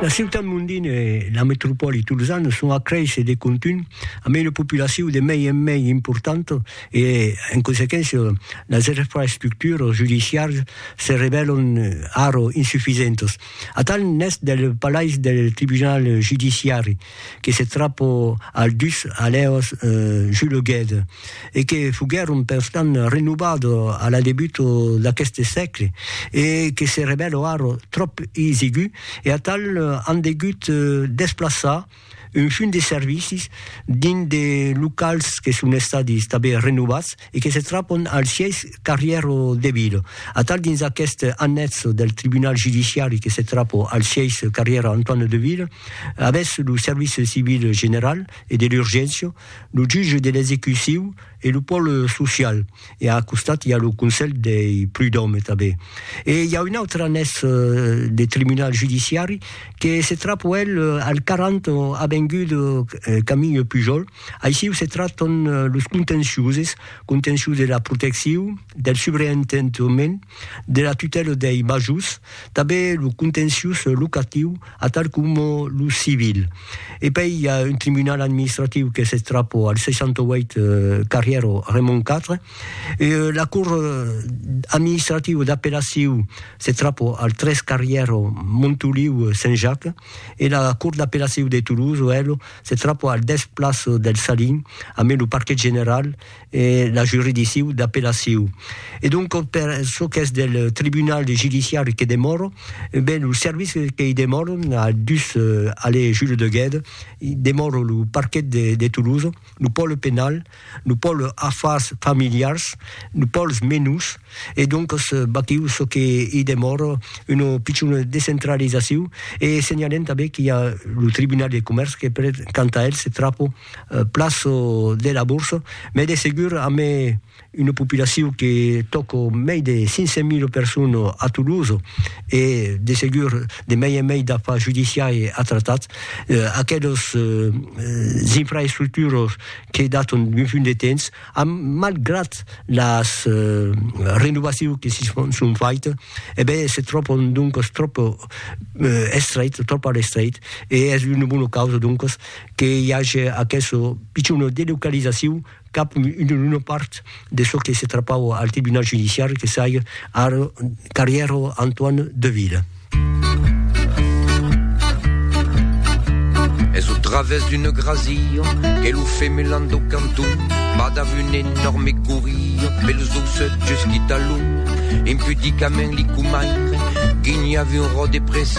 La ciutat mondina e la metropòli tolzana son a créisser de contunh amb una populacion de mei en mei importanta e, en consequéncia, las infraestructuras judiciaras se revèlan ara insufisentas. Atal n'es del palais del tribunal judiciari que se trapo al dus alèos juleguèt e que foguèron perstant renovado a la debuto d'aqueste sègle e que se revèlo ara tròp isigu e atal an degut desplaçar un fum de servicis dins de locals que son estadi tanben renovats e que se trapon al sièis Carrièro de Vilo. Atal dins aqueste annètzo del tribunal judiciari que se trapo al sièis Carrièro Antoine de Vilo, avètz lo service civil general e de l'urgéncia, lo jutge de l'execuciu e lo pòle social e a costat i a lo conselh dei prudòme tanben. E i a un autre annètzo de tribunal judiciari que se trapo el al 40 avenguda Camille Pujol, Aixiu se tractan los contenciuses, contencius de la protecciu, del subreentendement, de la tutèla dei majors, tanben lo contencius locatiu, atal coma lo civil. E pei i a un tribunal administratiu que se trapò al 68 carrièra Raymond iv, e la cort administrativa d'apellaciu se trapò al 3 carrièra Montoliu Saint-Jacques, e la cort d'apellaciu de Toulouse, ela, se trapò al dètz plaço del Salin, a mai lo parquet general e la juridicciu d'apellaciu. E donc per çò qu'es del tribunal judiciari que demòro, ben lo service qu'i demòro a dus allée Jules de Guède, demòro lo parquet de Toulouse, lo pòle penal, Nos pòls afars familiars, nos pòls menus, e doncas batiu çò que i demòra, una pichona descentralizaciu, e senhalem tanben qu'i a lo Tribunal de Comèrç que per quant a el se trapa plas de la borsa, mès de segur amé una populaciu que tòca mei de 500 mil personas a Toulouse, e de segur de mei en mei d'afars judiciari a tratar, aquelas infraestructuras que daton d'un punt de temps, am, malgrat las renovaciu que si son, son faite, e ben se tròpon doncos tròp estreit, tròp a l'estreit, e es una bona causa doncos que i age aqueso pichon delocalizaciu cap una part de çò que se trapava al tribunal judiciari que sai ar carrièro Antoine Deville. Es au través d'une grasilla que lo femelan do canton va dav un enorme courria per los doucet jusqu'i talon impudicament li comaire guinhava un rò de pressa